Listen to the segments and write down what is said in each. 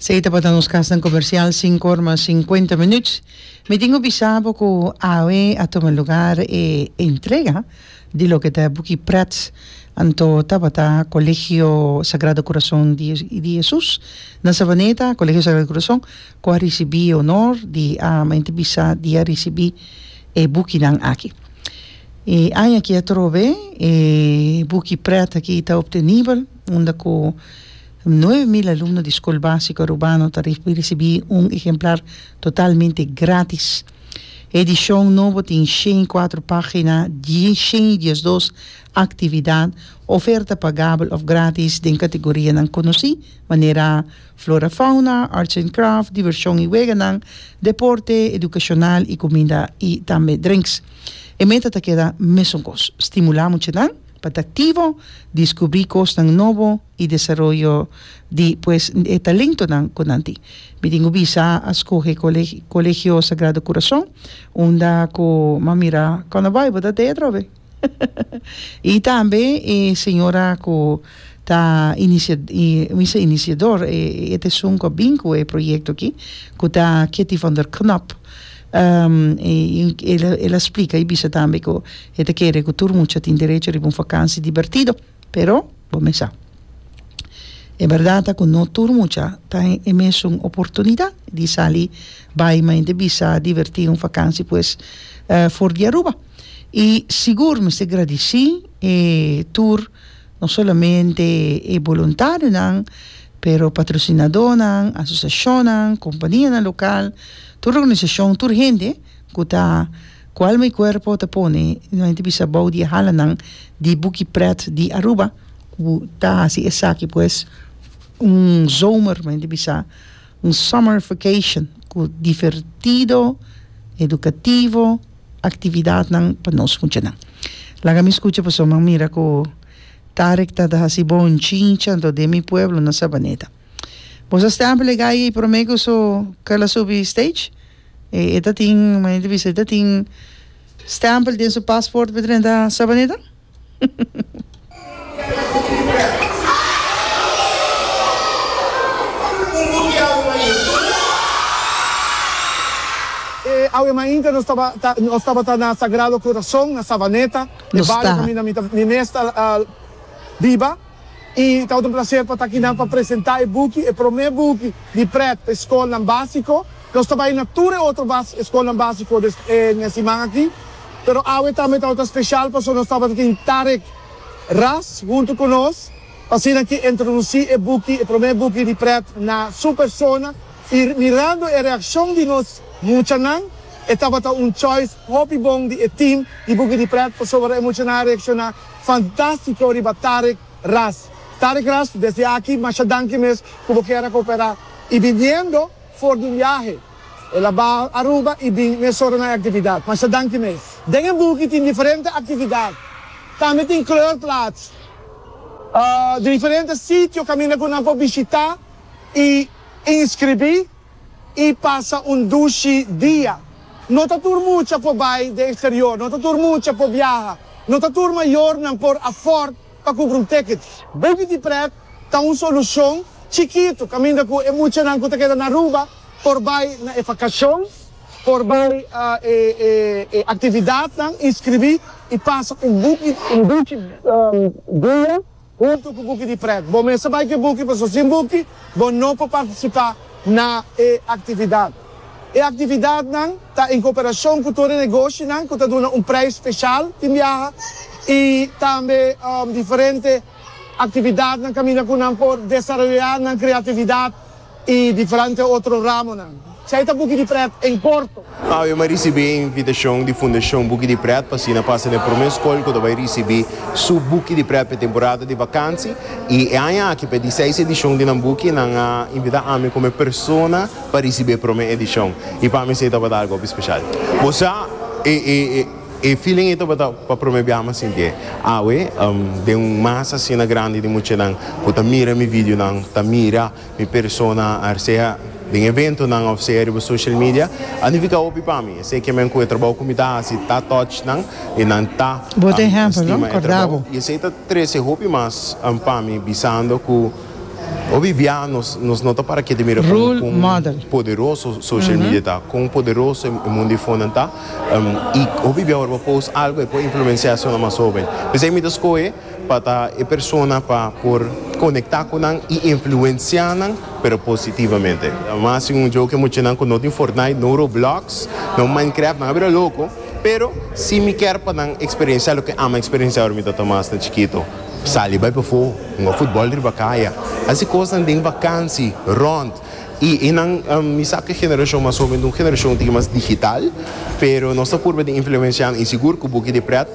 Esei tabata nos kasnan komersial, sinku or mas sinkuenta minuut. Mi tin ku bisa bo ku awe a tuma lugar e entrega di loke ta e buki Pret, anto tabata Kolegio Sagrado Kurason di Hesus na Savaneta, Kolegio Sagrado Kurason, ku a risibí e onor di a mente bisa di a risibí e bukinan aki. E aña aki atrobe e buki Pret aki ta optenibel. unda cu nueve mil alumno di School Basico Arubano ta ricibi un ehemplar totalmente gratis. E edicion nobo tin shen i cuatro pagina, shen i diesdos actividad, oferta pagabel of gratis den categorianan conoci, manera Flora Fauna, Arts and Craft, Diversion i Weganan, Deporte, Educacional i Cuminda i tambe Drinks. E meta ta keda mesun cos, stimula muchanan. pa ta aktivo, diskubrí kosnan nobo i desaroyo di pues e talentonan ku nan tin. Mi tin ku bisa a skohe Kolegi Kolegio Sagrado Kurason unda ku m'a mira Kòna Baibo ta tei atrobe i tambe e señora ku ta inicia bisa iniciador e e esun ku a bin ku e proyekto akí ku ta Ketty Van Der Knop. el a splika y bisa tambe cu e ta kere cu tur mucha tin derecho riba un vakansi dibertido pero bo mesa e berdad ta cu no tur mucha ta en e mesun oportunidad di sali bay ma inti bisa diverti un vakansi pues for di Aruba y sigur mester gradici tur No solamente e boluntarionan, pero patrosinadónan, asosiashonnan, kompanianan lokal, tur organisashon, tur hende ku ta ku alma i kuerpo ta pone no hende bisa bou di e halanan di Buki Pret di Aruba ku ta hasi esaki pues un zomer mi hende bisa Un summer vacation cu divertido, educativo actividadnan pa nos muchanan. Laga mi scucha pasobra mi a mira cu Tarek ta ta haci bon chincha anto den mi pueblo na Sabaneta. Boso a stempel e gay ey prome cu su kel a subi stage? E e ta tin, manda a bisa, e ta tin stempel den su passport pa drenta Sabaneta? E awe mainta nos tabata na Sagrado Corazon na Savaneta, e bario kaminda mi mes ta biba. I ta otro placer pa ta aki nan pa presenta e buki, e prome buki di pret pa e scolnan basico. Nos ta bay na tur e otro bas e scolnan basico des en e siman aki, pero awe tambe ta otro special paso nos tabata tin Tarek Ras hunto cu nos, pa asina ki introduci e buki, e prome buki di pret na su persona. I mirando e reaccion di nos muchanan, e tabata un choice hopi bon di e team di buki di pret, pasobra e muchanan a reacciona. Fantastico riba Tarek Ras. Tarek Ras desde aki masha danki mes cu bo keda coopera y viniendo for di un viahe el a baha Aruba y bin mes soronan e actividad. Masha danki mes. Den e buki tin diferente actividad. Tambe tin kleurplaats di diferente sitio caminda cu nan por bishita y inscribi. i pasa un dushi dia. No ta tur mucha por bai den eksterior, no ta tur mucha por biaha, no ta tur mayornan por afòrd pa kumpra un tèkit. Baby di prèt ta un solushon chikitu kaminda ku e muchanan ku ta keda na Aruba por bai na e vakashon, por bai e aktividatnan, inskribí i pasa un dushi dia. Huntu ku buki di prèt. Bo mester bai ku e buki pasobra sin buki bo no por partisipá na e aktividat. E aktividatnan ta en koperashon ku tur e negoshinan ku ta duna un preis speshal tin biaha i tambe diferente aktividatnan kaminda ku nan por desaroyá nan kreatividat. I diferente otro ramonan. C'ai ta buki di pret en Porto. Awe m'a risibí e invitashon di Fundashon Buki di Pret pa asina pasa na e promé skol ku ta bai risibí su buki di pret pa e temporada di bakansi. I e aña aki pa e diseis edishon di nan buki nan a invitá ami komo e persona pa risibí e promé edishon. I pa mi esei tabata algu hopi speshal. Bo sa e e e feeling ei tabata pa promé biaha m'a sinti e. Awe den un masa asina grandi di muchanan ku ta mira mi videonan ta mira. Mi persona a sea den eventonan of sea riba social media a nifica hopi pa mi. Esey kiamen cu e trabou cu mi ta haci ta touch nan y nan ta stima e trabou y esey ta trece hopi mas pa mi bisando cu hopi bia nos no ta para kiet di mira con poderoso social media ta, con poderoso e mundo di fonan ta y hopi bia ora bo post algo e por influencia esnan mas hoben. P'esey mi ta scoge. pa ta e persona pa por conecta cu nan y influencia nan pero positivamente. Mas sin un juego ke muchanan cu no tin Fortnite, no Roblox, no Minecraft nan a bira loco, pero si mi ker pa nan experiencia loke ama experiencia ora mi ta Tomas ta chikito, sali bay pafo, hunga futbol riba caya, haci cosnan den vakansi, rond y e nan mi sa cu e generacion mas hoben ta un generacion un tiki mas digital pero nos ta purba di influencia nan y sigur cu bo ki di pret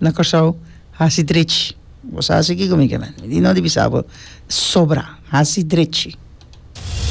Na Kòrsou hasi drechi. Bo sa hasi kiko mi ke men? Mi di no di bisa bo sobra. Hasi drechi.